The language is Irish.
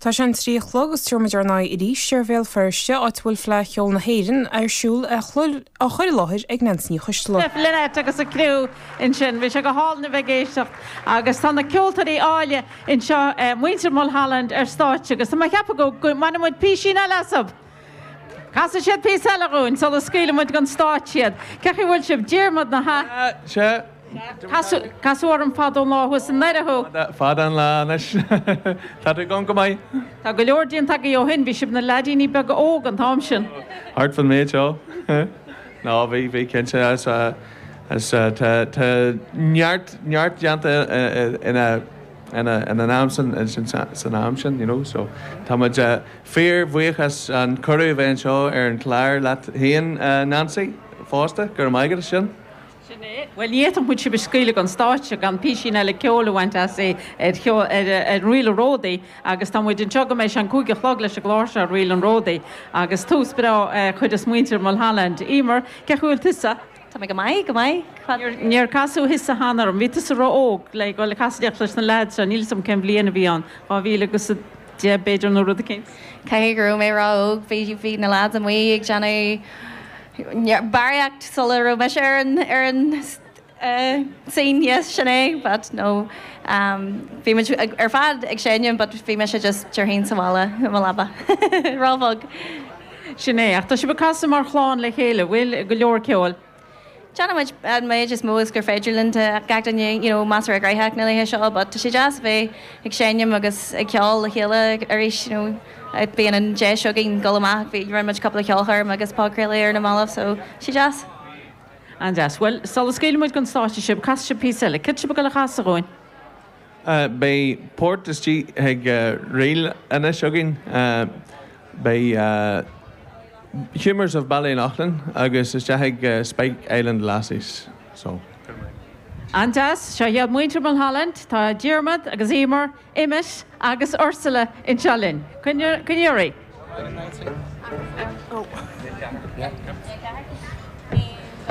Tá sé an trí a chlog, is tabharfaimid ár n-aghaidh arís ar Bhéal Feirste, áit a bhfuil Fleadh Cheoil na hÉireann ar siúl. á chur i láthair ag Neans Ní Choisdealbha. Lynette agus a criú ansin. Bhí sé go hálainn a bheith ag éisteacht agus tá na ceoltóirí áille anseo, muintir Mulholland ar stáitse agus tá mé ag ceapadh go mbainfidh muid písín eile asab! Casfaidh siad píosa eile dhúinn sula scaoileann muid den stáitse iad. Cén chaoi a bhfuil sibh? Diarmaid, na. Casadh orm fadó lá thuas i nDoire thú. Fada an lá anois. Tá tú i gcónaí go maith. Tá go leor déanta agaibh ó shin. Bhí sibh ina leaidíní beaga óg an t-am sin. Thart fan méid seo. Nó bhí, bhí cinnte. Is tá, tá, tá neart, neart déanta ina, ina, ina n-am san, san am sin, you know, so tá muid fíorbhuíoch as an cuireadh a bheith anseo ar an chlár leat féin a Neansaí fosta. Go raibh maith agat as sin. Sin é. Bhuel, ní fhéadfadh muid sibh a scaoileadh den stáitse gan písín eile ceoil a bhaint astu ar Ríl an Ródaí agus tá muid anseo go mbeidh sé an cúig a chlog leis an gclár seo ar Ríl an Ródaí agus tús breá a chuir ag muintir Mulholland. Éimear, cén chaoi a bhfuil tusa? Tá mé go maith, go maith. Cad. Níor casadh tusa cheana orm. Bhí tusa ró-óg le go le casaidheacht leis na leaids seo, níl 'fhios a'm cén bhliain a bhí ann, dhá mhíle agus a deich b'fhéidir nó rud eicínt? Caithfidh go raibh mé ró-óg, bhí, bhí na leaids amuigh ag déanamh, barraíocht sula raibh mise ar an scene, yes, sin é, but no, bhí muid ar fad ag seinm but bhí mise just tigh fhéin sa bhaile i mo leaba, róbheag. Sin é, ach tá sibh ag casadh mar chlann le chéile, bhfuil? Go leor ceoil. Déanann muid an méid is mó is gur féidir linn, tá gach duine, you know, más ar a gcroitheadh na laetha seo but tá sé deas a bheith ag seinm agus ag ceol le chéile arís, you know. Bíonn an deis againn dul amach, bhí, rinne muid cúpla ceolchoirm agus podchraoladh ar na mallaibh so tá sé deas. An-deas. Bhuel, sula scaoileann muid den stáitse sibh, casfaidh sibh píosa eile. Céard tá sibh ag goil a chasadh dhúinn? Beidh port isteach i ríl anois againn, beidh Humours of Ballyloughlin agus isteach i Spike Island Lasses so. An-deas. Seo iad muintir Mulholland, tá Diarmaid agus Emer. Emmet agus Ursula anseo linn. Go n-éirí.